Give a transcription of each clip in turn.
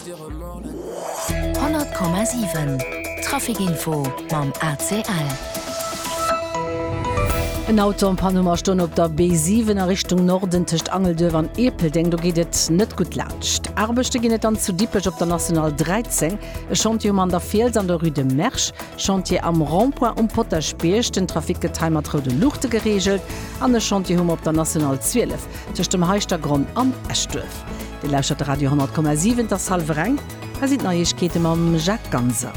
100,7 Trafic Info mam ACL. En Auto am Panne mar stoen op der B7 a Richtung Norden tëscht Angelduerf an Ierpeldeng. Do geet et net gutt laanscht. Aarbechte ginn et dann zu Dippech op der National 13. E Chantier um An der Fiels an der Rue de Mersch. Chantier am Rond-point um Potaschbierg. Den Trafic gëtt hei mat roude Luuchte gereegelt. An e Chantier hu mer op der National 12 tëscht dem Heischtergronn an Eschduerf. Dir lauschtert de Radio 10,7, et ass hallwer eng, hei sinn d'Neiegkeete mam Jacques Ganser.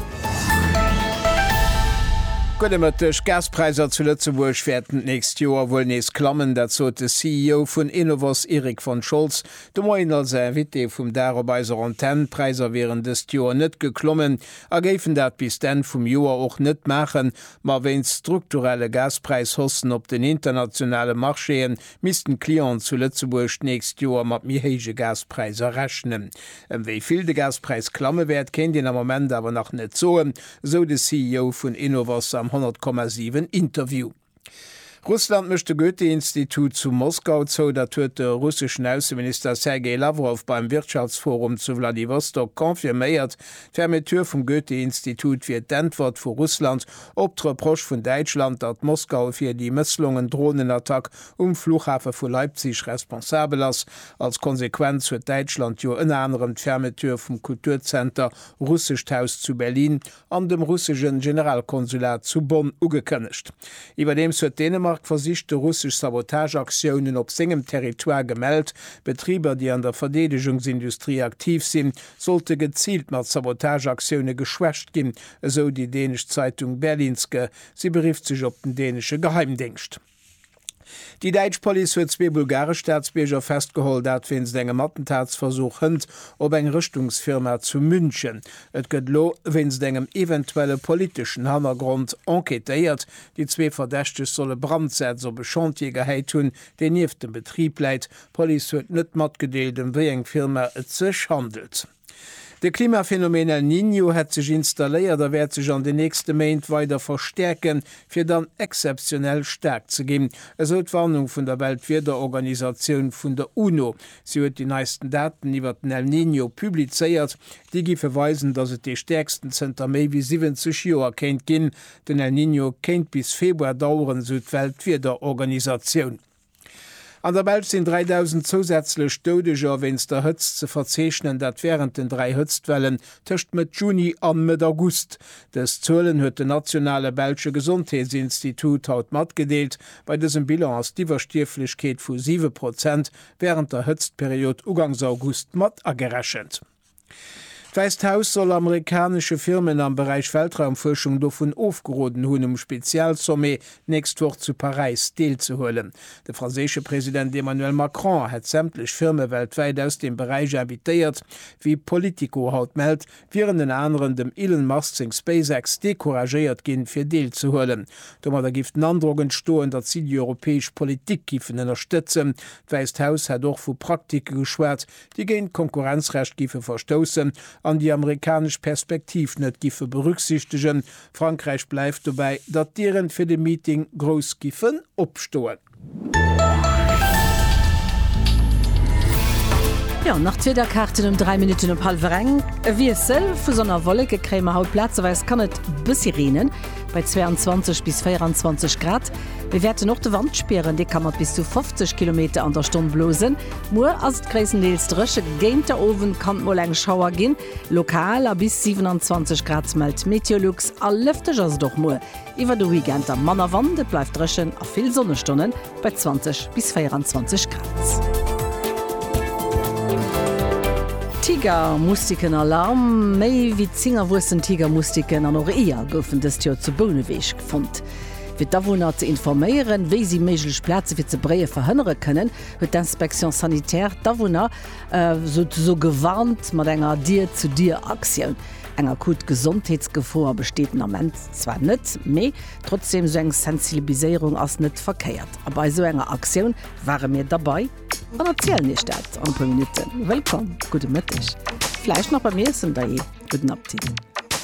Gudde Mëtteg, D'Gaspräisser zu Lëtzebuerg wäerten d'nächst Joer wuel nees klammen. Dat sot de CEO vun Enovos Erik von Scholz de Moien als Invité vum Dag op eiser Antenn. D'Präisser wieren dëst Joer net geklommen a géifen dat bis d'Enn vum Joer och net maachen. Ma wéinst strukturelle Gaspräishaussen op den internationale Marchéen Missten d'Clienten zu Lëtzebuerg d'nächst Joer mat méi héije Gaspräiser rechnen? Ëm wéi vill de Gaspräis klamme wäert, kéint een am Moment awer nach net soen, esou de CEO vun Enovos am 100,7 Interview. Russland mécht de Goethe-Institut zu Moskau zou, dat huet de russeschen Ausseminister Sergei Lawrow beim Wirtschaftsforum zu Wladiwostok confirméiert. D'Fermeture vum Goethe-Institut wier d'Äntwert vu Russland Op d'Reproche vun Däitschland, datt Moskau fir déi mësslongen Dronenattack um Fluchhafe vu Leipzig responsabel ass, als Konsequenz huet Däitschland jo ënner anerem d'Fermeture vum Kulturzenter Russescht Haus zu Berlin an dem russesche Generalkonsulat zu Bonn ugekënnegt. Iwwerdeems huet Dänemark versicht, de russesch Sabotageaktiounen op sengem Territoire gemellt. Betriber, déi an der Verdeedegungsindustrie aktiv sinn, sollte geziilt mat Sabotageaktioune geschwächt ginn, esou déi dänesch Zeitung Berlingske. Si berifft sech op den dänesche Geheimdéngscht. Déi däitsch Police huet zwee bulgaresch Staatsbierger festgeholl, dat wéinst engem Attentatsversuch hënt op eng Rëschtungsfirma zu München. Et gëtt elo wéinst engem eventuelle politeschen Hannergrond enquêtéiert. Déi zwee Verdächteg solle Brandsäz op e Chantier gehäit hunn, deen nieft dem Betrib läit, D'Police huet net matgedeelt, ëm wéi eng Firma et sech handelt. De Klimaphenomeen El Niño hätt sech installéiert a wäert sech an den nächste Méint weider verstäerken, fir dann exzeptionell staark ze ginn, esou d'Warnung vun der Weltwiederorganisatioun vun der UNO. Si huet déi neisten Daten iwwert den El Niño publizéiert. Déi giffe weisen, datt et dee stäerksten zënter méi wéi 70 Joer kéint ginn. Den El Niño kéint bis Februar daueren, esou d'Weltwiederorganisatioun. An der Belsch sinn 3.000 zousätzlech Doudeger wéinst der Hëtzt ze verzeechnen, dat wärend den dräi Hëtztwellen tëscht Mëtt Juni an Mëtt August. Dës Zuelen huet den nationale belsche Gesondheetsinstitut haut matgedeelt. Bei dësem Bilan ass d'Iwwerstierflechkeet vu siwe Prozent wärend der Hëtztperiod ugangs August mat agerechent. D'Wäisst Haus soll amerikanesche Firmen am Beräich Weltraumfuerschung dovun ofgeroden hunn, um Spezialsommet d'nächst Woch zu Paräis deelzehuelen. De franséische President Emmanuel Macron hätt sämtlech Firme weltwäit aus deem Beräich invitéiert. Wéi Politico haut mellt, wieren ënner anerem dem Elon Musk seng SpaceX decouragéiert ginn, fir deelzehuelen. Domadder géif den Androck entstoen, datt si déi europäesch Politik géifen ënnerstëtzen. D'Wäisst Haus hätt och vu Praktike geschwat, déi géint d'Konkurrenzrecht giffe verstoussen an déi amerikanesch Perspektiv net giffe berücksichtegen. Frankräich bleift dobäi, datt d'Dieren fir de Meeting grouss giffen opstoen. Jo, nach d'Wiederkaarten um 3 Minutten op hallwer eng. E Wiessel vu Sonn a Wolleke kréie mer haut, plazeweis kann et e bëssi reenen, bei 22 bis 24 Grad. Mir wäerten och de Wand spieren, dee ka mat bis zu 50 Kilometer an der Stonn blosen. Muer ass et gréisstendeels dréche, géint de Owend kann et mol eng Schauer ginn, lokal, a bis 27 Grad mellt d'Meteolux. A lëfteg ass et och muer. Iwwer de Weekend da manner Wand, et bleift dréchen a vill Sonnestonnen bei 20 bis 24 Grad. Tigermustiken Alarm, Méi wéi 10 erwuessen Tigermustiken an och Eeër goufen dëst Joer zu Bouneweg fonnt. Fir d'Awunner ze informéieren, wéi si méiglech Plaze fir ze bréie verhënnere kënnen, huet d'Inspection sanitaire d'Awunner souzesoe gewarnt mat enger Dier-zu-Dier-Aktioun. Eng akut Gesondheetsgefoer besteet den Ament zwar net, mee trotzdeem, esou eng Sensilbiséierung ass net verkéiert. A bei esou enger Aktioun ware mir derbei an erzielen Iech dat an e puer Minutten. Wëllkomm, gudde Mëtteg, vläicht nach beim Iessen, dajee gudden Appetit.